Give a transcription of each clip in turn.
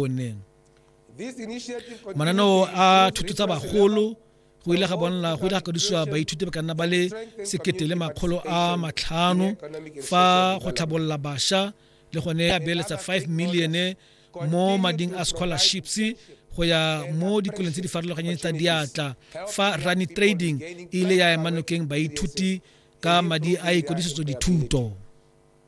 one mananeo a thuto tsa bagolo go ile ga bonala go ile ga kadisiwa baithuti ba ka nna ba le sekete le makgolo a matlhano fa go tlhabolola bašwa le gone a beeletsa 5 million mo mading a scholarships go ya mo dikolong tse di farologanyeng tsa diatla fa rani trading e ile ya emanokeng baithuti ka madi a ikodisetso dithuto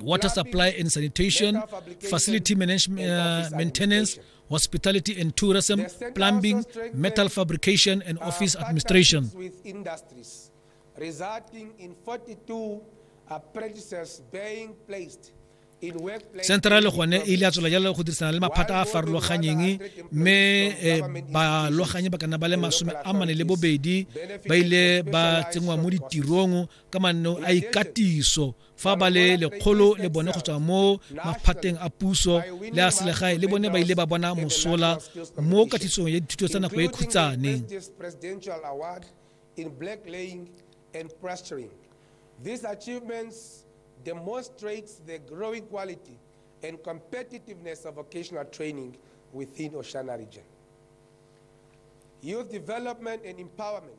water supply and sanitation, facility management, uh, maintenance, hospitality and tourism, plumbing, metal fabrication, and office administration. With industries, resulting in 42 apprentices being placed central gone e ile a tswela jalo go dirisana le maphata a farologanyeng mme eh, baloganyi ba kana ba le masome a mane le bobedi ba ile ba tsenngwa mo ditirong ka manno a ikatiso fa ba le lekgolo le bone go tswa mo maphateng a puso le a selegae le bone ba ile ba bona mosola mo katisong ya dithuto tsa nako e khutsane These achievements demonstrates the growing quality and competitiveness of vocational training within Oshana region. Youth development and empowerment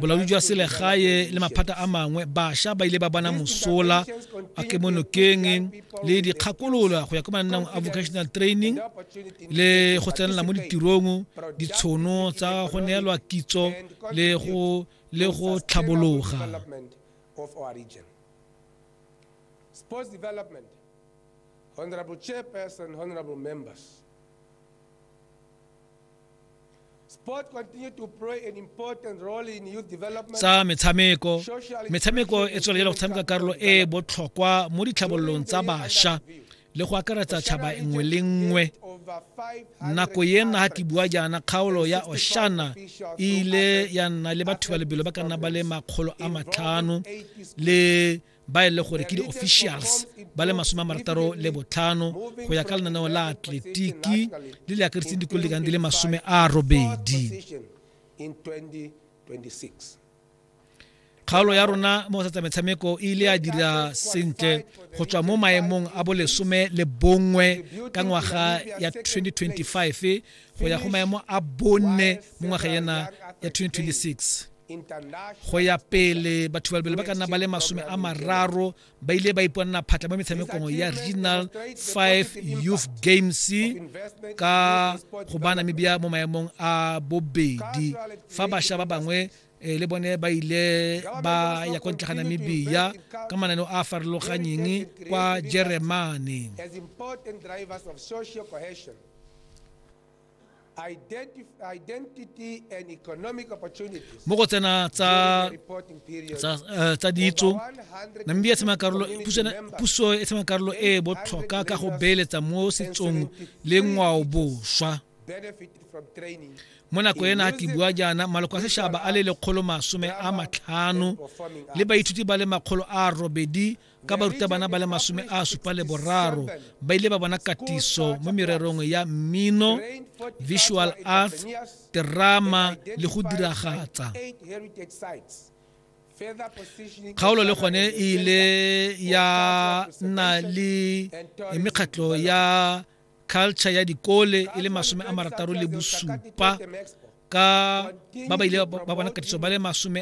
bolaodi jwa selegae le maphata a mangwe bašwa ba ile ba bona mosola a ke mo nokeng le dikgakolola go ya ko mananang a vocational training le go tsenela mo ditirong ditshono tsa go neelwa kitso le go le go tlhabologa Sports Development, Honorable Chairperson, Honorable Members, tsa metshameko metshameko e tswelela go tshameka karolo e e botlhokwa mo ditlhabololong tsa bašwa le go akaretsa tšhaba nngwe le nngwe nako ye nna ga ke bua jaana kgaolo ya oshana e ile ya nna le batho ba lebelo ba ka nna ba le makgolo a matlhano le ba e le gore ke di-officials ba le masome a marataro le botlhano go ya ka lenaneo la atletiki le le akaretseng dikolo di kang di le masome a robedi kgaolo ya rona mo go tsatsa metshameko e ile ya dira sentle go tswa mo maemong a bolesome le bongwe ka ngwaga ya 2025 go ya go maemo a bone mo ngwaga ena ya 2026 go ya pele batho balebele ba ka nna ba le masome a mararo ba ile ba iponana phatla mo metshamekong ya regional 5 youth games ka go bana mebia mo maemong a bobedi fa bašwa ba bangwe e le bone ba ile ba ya kwa ntle ga namibia ka mananeo a a farologanyeng kwa jeremane mo go tsena tsa tsa eh, tsa ditso namibia tshema karolo puso e tshema karolo e botlhoka ka go beeletsa mo setsong le ngwao boswa mo nako ena a tibua jaana maloko a sešaba a le lekgolo masome a matlhano le baithuti ba le makgolo a robedi ka barutabana ba le masome a supa le boraro ba ile ba bona katiso mo mererong ya mmino visual arts terama le go diragatsa kgaolo le gone e ile ya nna le mekgatlho ya culture ya dikole e le masome a marataro le bosupa ka ba ba ile ba bona katiso ba le masome